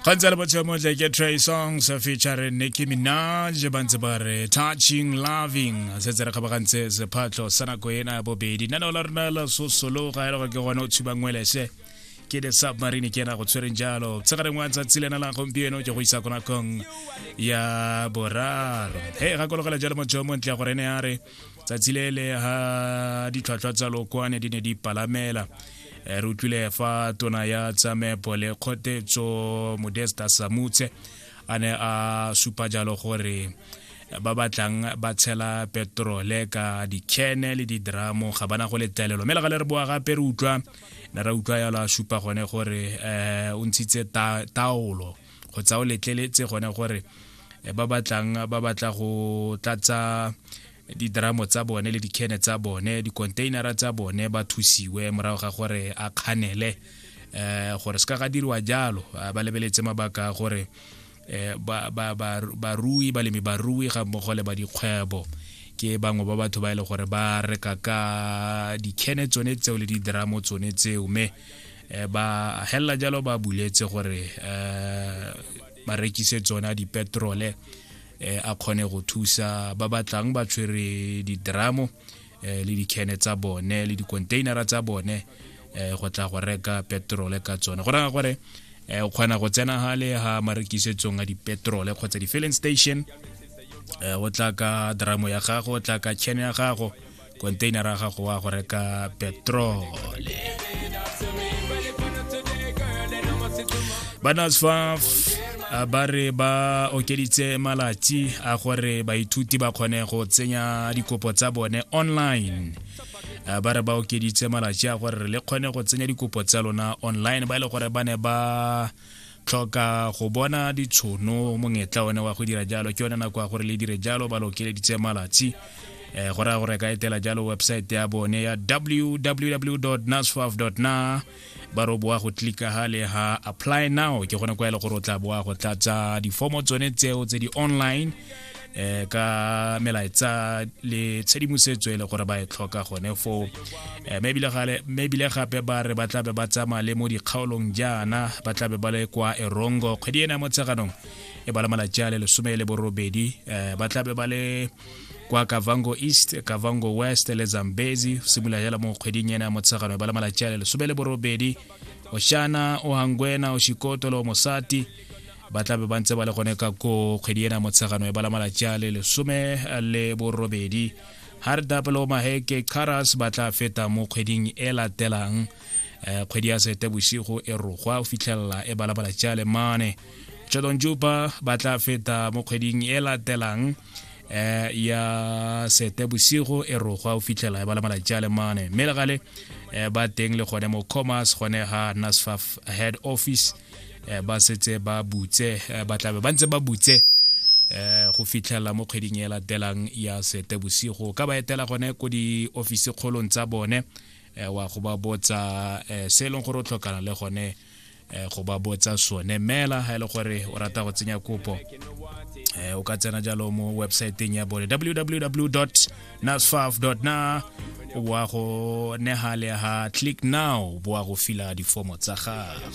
gantse le botshelo motle ke tray songs featuring nicki minaj ba ntse ba re touching loving setse re kgabagantse sephatlho sa nako ena bobedi nane o la rona la sosolo ga e le gore ke gone o tshubang welese ke the submarine ke ena go tshwereng jalo tshegareng wa tsatsi lena la gompieno ke go isa ko nakong ya boraro he gakologela jalo motho yo montle gore ene a re tsatsi le le ha ditlhwatlhwa tsa lokoane di ne di palamela eh, re utlwile fa tona ya tsamepo le kgotetso modesta samutse a ne a supa jalo gore ba batlang ba tshela petrole ka dikene le didramo ga bana go letelelo mme le ga le re boa gape re utlwa ne ra utlwa yalo a supa gone gore um o ntshitse taolo go tsa o letleletse gone gore eh, ba batlang ba batla go tlatsa didramo tsa bone le dikene tsa bone dicontainera tsa bone ba thusiwe morago ga gore a kganele um gore se ka ga diriwa jalo ba lebeletse mabaka a gore Eh, barui balemi barui ga mmogo le ba dikgwebo ke bangwe ba batho ba e le gore ba reka ka dikhene tsone tseo le didramo tsone tseo mme eh, ba hella jalo ba buletse gore eh, ba rekise tsona dipetrole eh, a kgone go thusa ba batlang ba tshwere didramo eh, le dikene tsa bone le dikontainara tsa bone eh, go tla go reka petrole ka tsone go raya gore eh, o kgona go tsena gale ga marekisetsong a dipetrole kgotsa di-filling station eh, o tla ka dramo ya gago o tla ka chene ya gago konteinara gago wa go reka petrole banasfaf ba re ba okeditse malatsi a gore baithuti ba kgone go tsenya dikopo tsa bone online ba re ba okeditse malatsi a gore le kgone go tsenya dikopo tsa lona online ba e le gore ba ne ba tlhoka go bona ditshono monyetla one wa go dira jalo ke yone nako ya gore le dire jalo ba lokeleditse malatsi um go raya gore ka etela jalo website ya bone ya www nasfaf na ba re boa go tlika ha le ha apply now ke gone kwa e le gore o tla boa go tlatsa difomo tsone tseo tse di online eh ka melaetsa le tshedimosetso e le gore ba e tlhoka gone foo eh, mme ebile gape ba re ba tlabe ba tsamaya le mo dikgaolong jaana ba tlabe ba le kwa erongo kgwedi ena mo tsheganong e ba le malatsi a le lesome le borobedi eh, ba tlabe ba le kwa kavango east kavango west le zambezi simolola jala mo kgweding ena mo tsheganong e ba le malatsi a le lesome le borobedi oshana ohangwena oshikotolo mosati ba tlabe ba ntse ba le gone ka ko kgwedi ena motshegano e bala malatsi a le lesome le borobedi hardapelo maheke caras ba tla feta mo kgweding e latelang um kgwedi ya sete bosigo e rogwa o fitlhelela e bala malatsi a le mane jodon juba ba tla feta mo kgweding e latelang eh ya sete bosigo e rogwa o fitlhela e bala malatsi a le mane mme legale eh, ba teng le gone mo commerce gone ga nasfaf head office eh, ba setse ba butse eh, ba tlabe ba ntse ba butse eh go fitlhela mo kgweding e latelang ya sete bosigo ka ba etela gone ko di office kgolong tsa bone eh, wa go ba botsa eh, se e leng gore o tlhokana le gone eh, go ba botsa sone mela ha e le gore o rata go tsenya kopo eh, o ka tsena jalo mo websaeteng ya bone www nasfaf na wa go nega le ha click now boa go fila difomo tsa gago